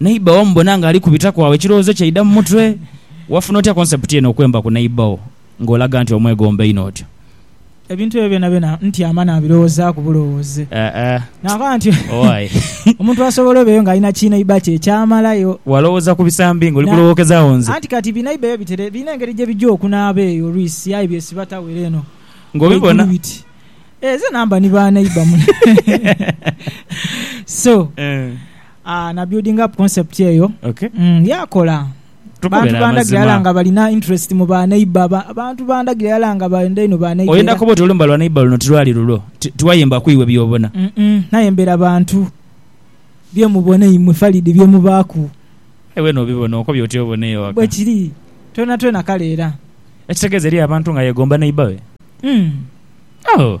Neighbour wamubona nga ali kubitaku agho ekirowoozo kye aidha mu mutwe. Wafuna otya concept eno okwemba ku neighbour wo nga olaga nti omwegomba einho otyo? Ebintu ebyo byonabyona ntyama nabirowoozaku bulowooze. Nakoba nti omuntu asobola obeeyo nga alina kineighbour kye ekyamalayo. Walowooza ku bisambi nga oli kulowokezaagho nze? Anti kati bineighbour eyo bitere birina engeri gye bijja okunaaba eyo olwisi aye byesiba tawera eno waigulu biti, Eeh zena mba ni baneighbour mule so. Na building up concept eyo yaakola. Abantu bandhagira yala nga balina interest mu ba neighbour. Abantu bandhagira yala nga benda inho ba neighbour. Oyenda koba oti olumba lwa neighbour luno tilwali lulwo. Tiwayemba ku iwe by'obona. Aye mbera bantu bye mubona imwe Farid bye mubaaku. Aye weena obibona okobye oti obona eyo ghaka. Bwekiri twonatwona kale era. Ekitegeeza eriyo abantu nga yegomba neighbour we? Ooh.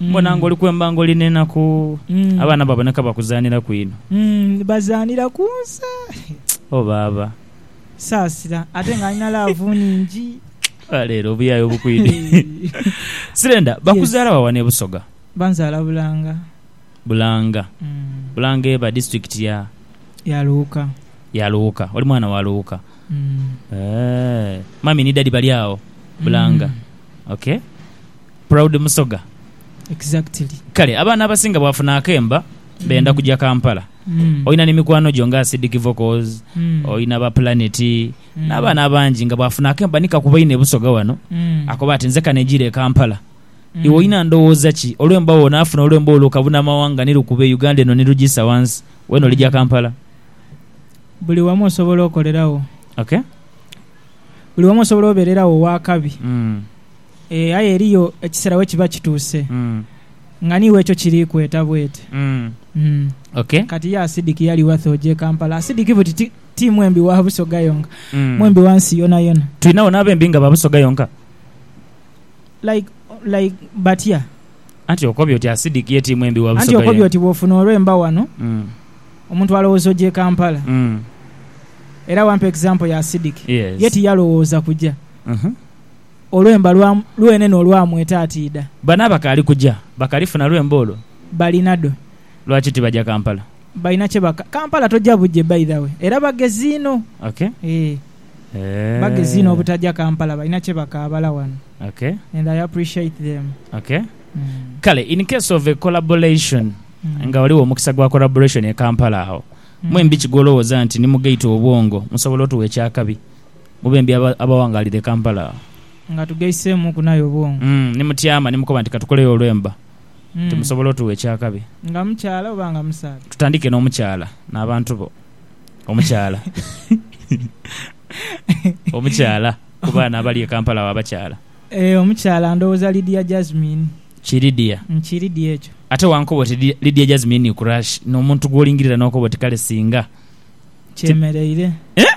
Mbona ng'oli kwemba ng'oli n'enaku. Abaana baboneka bakuzaaniraku inho. Bazaanira ku nsa. Oh baaba. Saasira. Ate nga alina laavu nhingi. Oba leero obuyaye obukwidhi. Sirenda, bakuzaala wa wano e Busoga? Banzaala Bulanga. Bulanga. Bulanga eba disiturikiti ya? Ya Luuka. Ya Luuka. Oli mwana wa Luuka. Eeh. Mummy ni daddy bali agho Bulanga? Ok. Proud Musoga. Exactly. Kale abaana abasinga bwafuna akemba benda mm. kuja Kampala mm. olina ni mikwano gyo nga Acidic Vocals mm. olina ba Planet mm. n'abaana abangi nga bwafuna akemba nikakuba ine busoga wano mm. akoba ati nze kanejire Kampala mm. iwe olina ndowooza ki olwemba wona afuna olwemba olwo kabuna amawanga nilukube Uganda eno nilugisa wansi wena olija mm. Kampala buli wamu osobola okolerawo okay buli wamu osobola obererawo wakabi mm. Aye eriyo ekiseera we kiba kituuse nga ni w'ekyo kiri kweta bwete. Kati ye asidiki yali wathe oja e Kampala? Asidiki buti ti, ti mwembi wa Busoga yonka, mwembi wa nsi yonayona. Twinagho n'abembi nga ba Busoga yonka. Like, like batya? Anti okobye oti asidiki ye ti mwembi wa Busoga yonka. Anti okobye oti bw'ofuna olwemba wano, omuntu alowooza oja e Kampala. Era wampa example ya asidiki. Ye tiyalowooza kuja. Olwemba lwa lwene n'olwamweta ati idha. Bano abakaali kuja bakalifuna lwemba olwo? Balinadho. Lwaki tibaja Kampala? Balina kye baka. Kampala toja buje by the way. Era bagezi inho. Ok. Eeh. Bagezi inho obutaja Kampala. Balina kye bakaabala wano. Ok. And I appreciate them. Ok. Kale in case of a collaboration, nga ghaligho omukisa gwa collaboration e Kampala agho, mwembi ki gw'olowooza nti ni mu gate obwongo musobola otugha eky'akabi? Mubembi abawangaalira e Kampala. Nga tugaiseemuuku n'aye obwongo. Ni mutyama ni mukoba nti ka tukoleyo olwemba nti musobola otuwa eky'akabi. Nga mukyala oba nga musaadha. Tutandike n'omukyala n'abantu bo. Omukyala. Omukyala ku baana abali e Kampala agho abakyala. Ee, omukyala ndowooza Lydia Jazmine. Ki Lydia? Ki Lydia ekyo. Ate wankoba oti Lydia Jazmine ni crush, n'omuntu gw'olingirira n'okoba oti kale singa. Kyemereire. Eeh!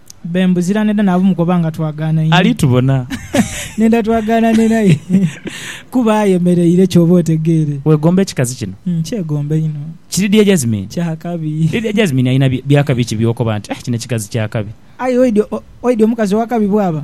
Be mbuzira n'edha naabu mukoba nga twagaana inho. Ali tubona. N'edha twagaana ni naye. Kuba ayemereire ky'oba otegeere. Weegomba ekikazi kino? Nkyegomba inho. Ki Lydia Jazmine? Kya kabi. Lydia Jazmine alina bya kabi ki by'okoba nti, Aih kino ekikazi kya kabi? Aye oidhi omukazi owa kabi bw'aba.